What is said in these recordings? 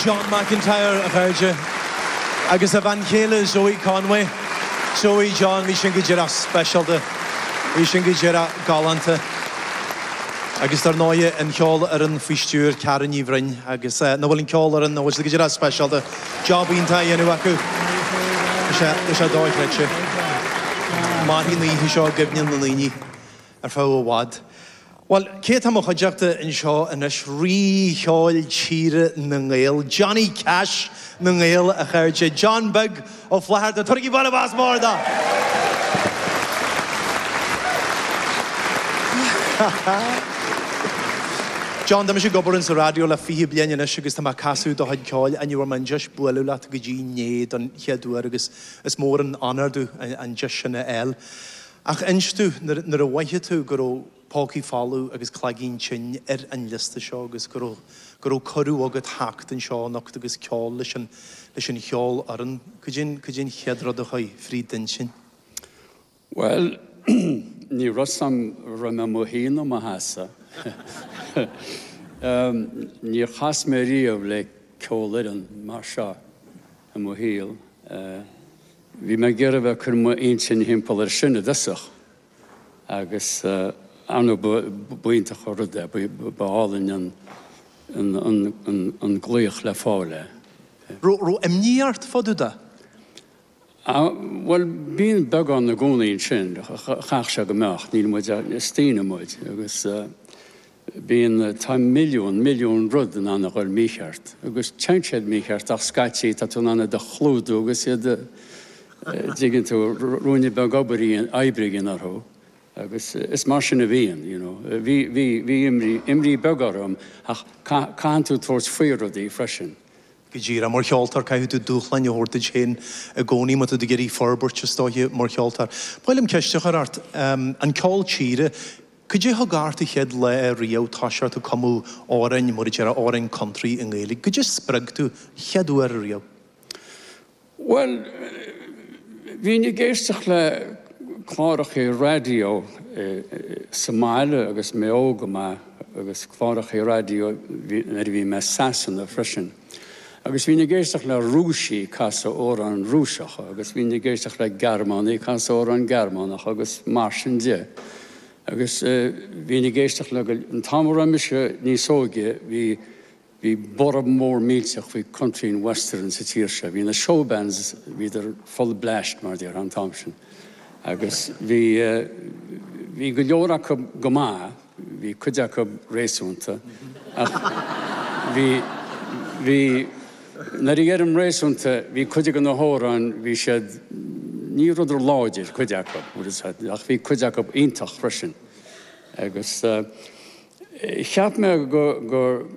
John McIntyre, a chairde, agus a bhean chéile Zoë Conway. Zoë, John, bhí sin go díreach speisialta. Bhí sin go díreach galánta. Agus dar ndóigh, an cheolfhoireann faoi stiúir Karen Ní Bhroin agus nach bhfuil an cheolfhoireann, nach bhfuil siad go díreach speisialta? Job iontach á dhéanamh acu. Tá sé dóchreidte. Mairfidh an oíche seo i gcuimhne na ndaoine. ar feadh i bhfad. Bhuel, cé atá i mo chuideachta anseo anois, Rí cheoil tíre na nGael, Johnny Cash na nGael, a chairde, John Beag Ó Flatharta! Tabhairigí bualadh bos mór do! John, tá mise ag obair insa raidió le fiche bliain anois agus tá mé ag casadh do chuid ceoil agus ní bhfuair mé deis bualadh leat go dtí inné don chéad uair agus is mór an onóir domh an deis sin a fháil. Ach inis domh, nuair a mhoithigh tú go raibh pócaí folamh agus cloigín tinn ar an liosta seo agus go raibh go raibh cuireadh agat theacht anseo anocht agus ceol a rá leis an leis an cheolfhoireann, cad é cad é an chéad rud a chuaigh fríd d'intinn? Bhuel, ní raibh a fhios agam an raibh mé i mo shuí nó i mo sheasamh, níor chas mé riamh le ceolfhoireann mar seo i mo shaol. Bhí mé ag iarraidh a bheith ag cur m'intinne timpeall air sin i dtosach agus, ar ndóigh, ba iontach an rud é, ba álainn an glaoch le fáil é. Raibh imní ort fá dtaobh de? Bhuel, bíonn beagán i gcónaí ansin, chaithfeadh sé go mbeadh, níl muid, is daoine muid agus. Bíonn, tá milliún, milliún rud in ann a dhul mícheart, agus téann siad mícheart ach scaití tá tú in ann iad a chlúdú agus iad a, a' dtuigeann tú, ruainne beag obair a dhéanamh, oibre a dhéanamh orthu agus is mar sin a bhíonn, you know. Bhí, bhí, bhí imní, imní beag orm ach caith, caitheann tú tabhairt faoi rudaí freisin. Go díreach, mar cheoltóir caithfidh tú dúshláin a thabhairt duit féin i gcónaí má tá tú ag iarraidh forbairt, is dóigh, mar cheoltóir. Ba mhaith liom ceist a chur ort, an ceol tíre, Cad é thug ort an chéad lá riamh toiseacht ag cumadh amhráin, mar a déarfá, amhráin country i nGaeilge? Cad é spreag tú an chéad uair riamh? Bhuel, bhínn ag éisteacht le clárachaí raidió sa mbaile agus mé óg go maith, agus clárachaí raidió nuair a bhí mé i Sasana freisin. Agus bhínn ag éisteacht le Rúisigh ag casadh amhráin Rúiseacha agus bhínn ag éisteacht le Gearmánaigh ag casadh amhráin Gearmánacha agus mar sin de. Agus bhínn ag éisteacht le go leor. An t-am a raibh mise níos óige bhí, bhí borradh mór millteach faoi Country and Western sa tír seo. Bhí na showbands, bhíodar full bleaist mar a déarfá an t-am sin agus bhí, bhí go leor acu go maith. Bhí cuid acu réasúnta, ach bhí, bhí, nuair a dheirim réasúnta, bhí cuid acu, na hamhráin, bhí siad, ní rabhadar láidir, cuid acu, ach bhí cuid acu iontach freisin. Agus cheap mé go, go,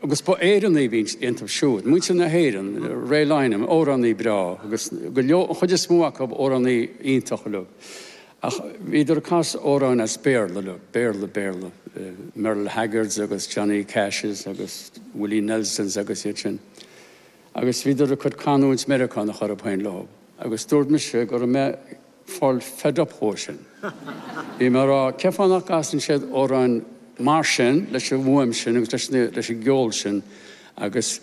agus ba Éireannaigh a bhí iontu siúd, muintir na hÉireann, Ray Lynam, amhránaí breá, agus go leor, an chuid is mó acu, amhránaithe iontacha uilig. Ach bhíodar ag casadh amhráin as Béarla leo, Béarla, Béarla, Merle Haggards agus Johnny Cashes agus Willie Nelsons agus iad sin. Agus bhíodar ag cur canúint Mheiriceánach orthu féin leo. Agus dúirt mise go raibh mé ag fáil fed up dhó sin. Bhí mé ag rá, cén fáth nach gcasann siad amhráin mar sin, leis an bhfuaim sin agus leis an, leis an gceol sin agus,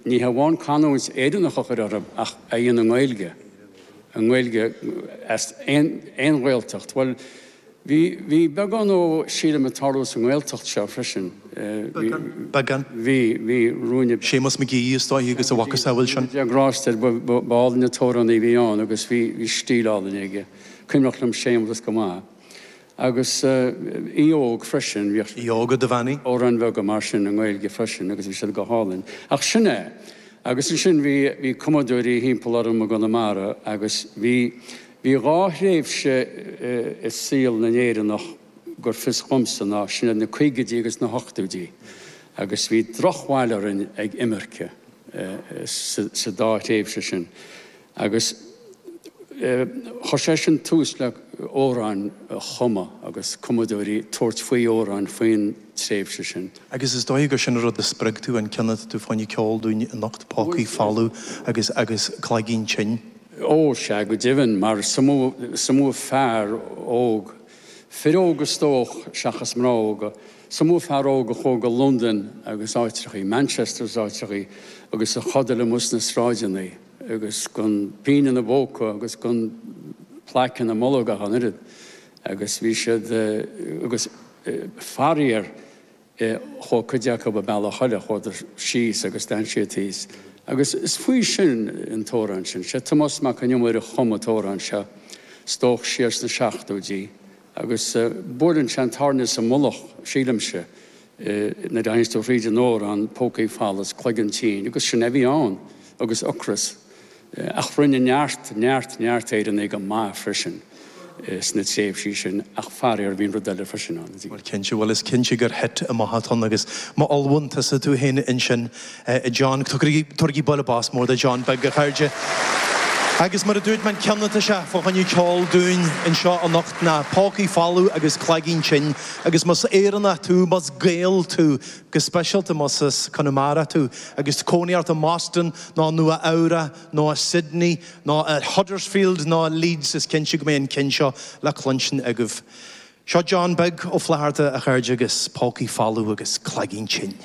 Ní hamháin canúint Éireannach a chur orthu ach a dhéanamh i nGaeilge, i nGaeilge as aon Ghaeltacht. Bhuel, bhí beagán dhó, sílim, ag tarlú sa nGaeltacht seo freisin. Beagán? Beagán? Bhí, bhí. Rúinne. Séamus McGee is dóigh agus a mhacasamhail sin. Séamus McGee, go ndéana Dia grásta air, ba álainn an t-amhránaí a bhí ann agus bhí stíl álainn aige. Cuimhneach liom Séamus go maith. Agus Aodh Óg freisin. Bhí. Aodh Óg Ó Duibheannaigh. Amhráin bheaga mar sin i nGaeilge freisin agus bhí siad go hálainn. Ach sin é. Agus ansin bhí, bhí cumadóirí thimpeall orm i gConamara agus bhí, bhí dhá thréimhse i saol na nÉireannach gur fios dhomsa ná, sin iad na caogaidí agus na hochtóidí. Agus bhí drochbhail orainn ag imirce sa dá thréimhse sin. Agus chuir sé sin tús le amhráin a chumadh agus cumadóirí ag tabhairt faoi amhráin faoin tréimhse sin. Agus is dóigh gur sin an rud a spreag tú, an ceann atá tú ag gabháil a cheol dúinn anocht, Pócaí Folamh agus agus Cloigeann Tinn. Ó, sea, go deimhin, mar is iomaí fear óg, fir óga is dóch, seachas mná óga, is iomaí fear óg a chuaigh go Londain agus áitreachaí, Manchester is áitreachaí, agus a chodail amuigh sna sráideannaí, agus gan pínn ina bpóca agus gan plaic ina mbolg ach an oiread, agus bhí siad, agus faraor chuaigh cuid acu an bealach eile, chuadar síos agus d'fhan siad thíos. Agus is faoi sin an t-amhrán sin. Sé Tomás Mac an Iomaire a chum an t-amhrán seo, is dóch, siar sna seachtóidí agus buaileann sé an tairne sa mhullach, sílimse, é, nuair a théanns tú thríd an amhrán, pócaí folamh 's cloigeann tinn, agus sin é a bhí ann, agus ocras, ach rinne neart, neart, neart Éireannaigh go maith freisin sna tréimhsí sin, ach faraor, bhí an rud eile freisin ann, a Bhil. Cinnte, bhuel, is cinnte gur hit a bhí agat ann, agus má ullmhaíonn tusa tú fhéin ansin, a John, tabhairigí buille bos mór do John Beag, a chairde. Agus mar a dúirt mé cheana, is é an ceann a cheolfaidh sé dúinn anseo anocht ná pócaí folamh agus cloigín tinn. Agus más Éireannach tú, más Gael tú, go speisialta más as Conamara tú, agus cónaí ort i mBoston, nó i Nua-Eabhrac, nó i Sydney, nó i Huddersfield, nó i Leeds, is cinnte go mbeidh an ceann seo le cluinstin agaibh. Seo John Beag Ó Flatharta, a chairde, agus pócaí folamh agus cloigín tinn.